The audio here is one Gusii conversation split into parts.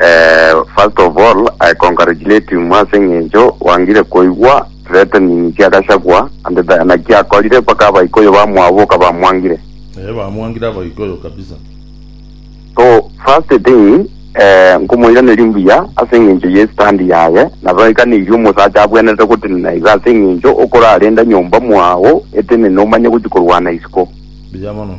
Eh, first of all, I congratulate you mwase ng'encho wangire koigwa threatening cia Gachagua and the- naki akorire mpaka abaikoyo bamwaboka bamwangire. Eh, bamwangire abaikoyo kabisa. So first thing eh, nkomoiraneria mbuya ase eng'encho ye stand yaye nabo aikaneirie omosacha abwenerete gotenena iga ase eng'encho okorarenda nyomba mwao etenene omanye gochi korwana isiko Mbuya mono.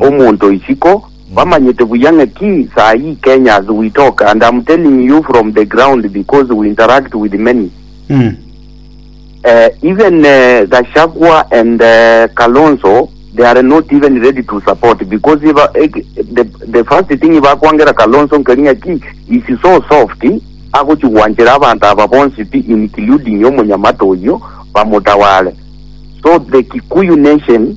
Omonto isiko, bamanyete buya ng'a ki saa ii Kenyans we talk and am telling you from the ground because we interact with many eh, even eh, Gachagua and eh, Kalonzo they are not even ready to support because iba, eh, the, the first thing bakwangera Kalonzo nkeri ng'a ki is so soft agochigwanchera abanto aba bonsi pi including omonyamata oyio bamotawale so the Kikuyu nation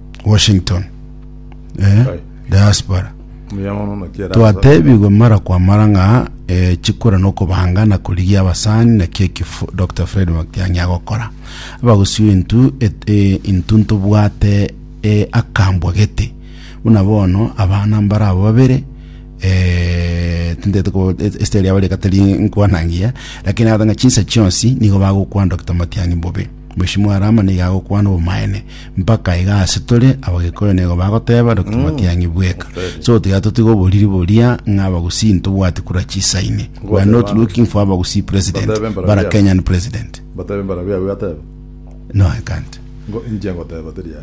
Washington. Eh, Aye. diaspora. Omuya mono naki era Twatebigwe mara kwa mara ng'a eh, chikura nokobanga na korigia abasani naki ekifo Dr. Fred Matiang'i agokora. Abagusio intu et- eh, intu ntobwate eh, akambwa gete. Buna bono abana mbara abo babere eh, tintete ko esiteri yabo reka teri nkwanangia lakini agata ng'a chinsa chionsi nigo bagokwana Dr. Matiang'i bobe. Mweshimo are amo nigo agokwana obomaene, mpaka iga ase tore Abagikuyu nigo bagoteba Dokimotiang'i bweka. So tiga totige oboriri boria ng'a Abagusii ntobwati kura chisaini. We are not looking for Abagusii president, but a Kenyan president. Mbatebe mbarabwo Yahweh ateba. No, I can't. Inche ngoteba teri aye.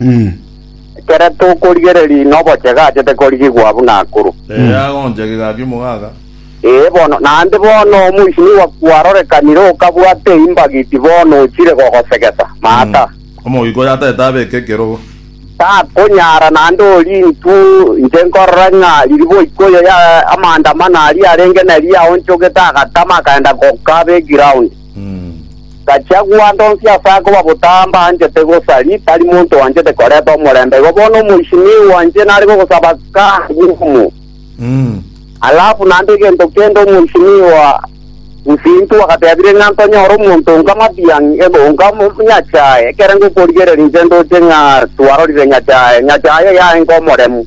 Mm. Ekero tokorigereria ng'a obochega achete korigigwa buna akuru. Ere agoncha egegaa ki'omogaga. Ee bono, naende bono omoisinigwa kwarorekanire okabwata eimbagiti bono ochire gogosegesa. Maata. Omogika oyo ataete abeke ekerogo. Takonyara naende orie intwe inche nkorora ng'a riria boika oyo ya amanda amane aria arenge nari aonchogete agatama akaenda goka be ground. Gachagua, Ndonsi ase akoba botamba anchete gosari, tari monto oanchete koreta omorembe. Igo bono omoisinii oanche nare gogosaba kaare bw'obomo. Alafu naende egento kende omoisinii oa Busintu agatebire ng'a ntonyore omonto onga Matiang'i, ebe onga Nyachae, ekere ngokorigereria inche ndoche ng'a twarorire Nyachae, Nyachae oyo aye ng'omoremu.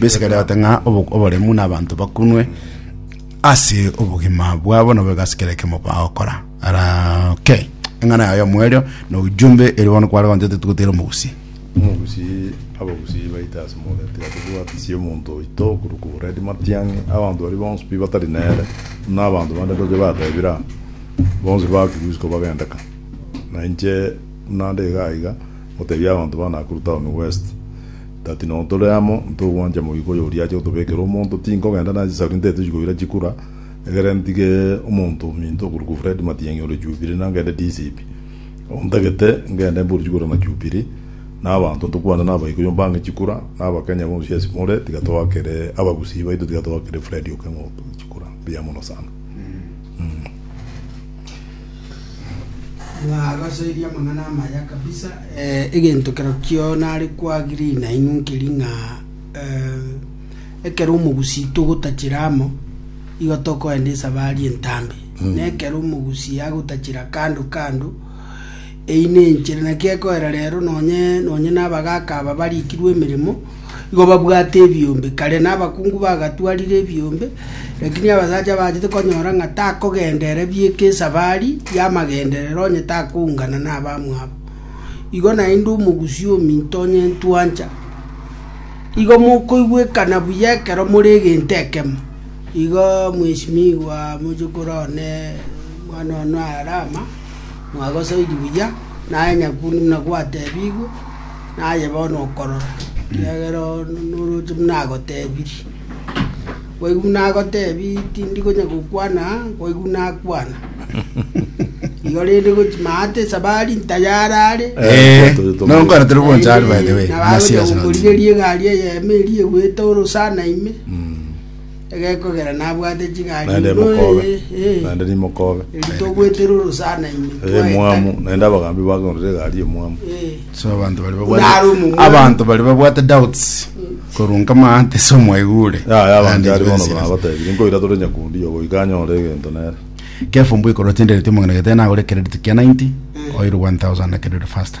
Besekerete ng'a obo- oboremu na abanto bakunwe ase obogima bwabo nabo egasi kera ekemo bagokora ara okay eng'ana yaye omoerio na ujumbe eri bono kware gonchete togotera omogusi Omogusi abagusi baite ase Moreti ase tobwatisie omonto oito korwa ku Redi Matiang'i abanto baria bonsi pi batari nere buna abanto bande ndoche batebire aa bonsi bakigwa isiko bagendeka na inche buna nde iga iga ngotebia abanto ba Nakuru town west That noo tore amo, ntogwancha moika oyo oria ache gotobekera omonto, tinkogenda na chisauri ntaete chikoira chikura, egere ntige omonto ominto okorokwa Fred Matiang'i ore Jubilee na ngende DCP. Ontagete ngende mbore chikura na Jubilee, na abanto ntokwane na abaikuyu mbange chikura, na abakenya bonsi ase more, tiga toakere abagusii baito tiga toakere Fred Okeng'o chikura. Mbuya mono sana. Nabasoirie amang'ana aya amaya kabisa, eh, egento kero kio nare kwagiri nainwe nkeri ng'a eh, ekero omogusi togotachera amo igo tokoenda esabari entambe mm. na ekero omogusi agotachera kando kando eyi nenchere naki ekoera rero nonye nonye nabagaka aba barikirwe emeremo Igo babwate ebiombe. Kare nabakungu bagatwarire ebiombe, lakini abasacha bachete konyora ng'a takogenda ere bieka esabari y'amagenderero onye takoungana nabamwabo. Igo naende omogusii ominto onye ntwancha, igo mokoigwekana buya ekero more egento ekemo. Igo mweshimiwa moche korwa one mwana one o Alama, mwagosaidi buya, naye nyakundu buna gwatebigwe. Naye bono okorora, ekiagera one noroche buna agotebirie. Koigwa buna agotebi tindi konya gokwana, koigwa buna akwana. Igo rende gochi maate esabari ntayare are. Eh, nonkwana turi bonchari by the way. Nabagocha Nasiasa. gokorigeria egari eyemo eria egwete orosana ime. egekogera nabwate ching'aki Naende buna mokobe, oye, eh, naende nimokobe. eri togwetera orosana ime Eye mwamu, naende abagambi bakorire egari y'omwamu. Eh, So abanto bari Buna babwate ari omomura. abanto bari babwate doubts korwa nkama ante so mwaigure Yaya abanto Ande ari bono twesire. nabatebire, nkoira tore nyakundi obo iga anyore egento nere. Kefo mbuikoro tendereti omong'ina gete nagore credit kia 90 oirwe 1000 na credit faster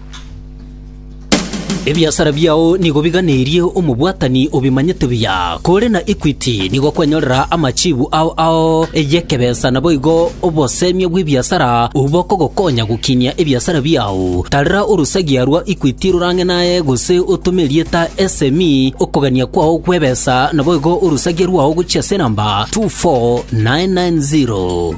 Ebiasara biao nigo biganerie omobwatani obimanyete buya, kore na Equity nigo kwanyorera amachibu ao ao y'ekebesa naboigo obosemia bw'ebiasara obwo bokogokonya gokinia ebiasara biao. Tarera orosagia rwa Equity rorang'e naye gose otome erieta SME okogania kwao kw'ebesa naboigo orosagia rwao gochia ase enamba 24990.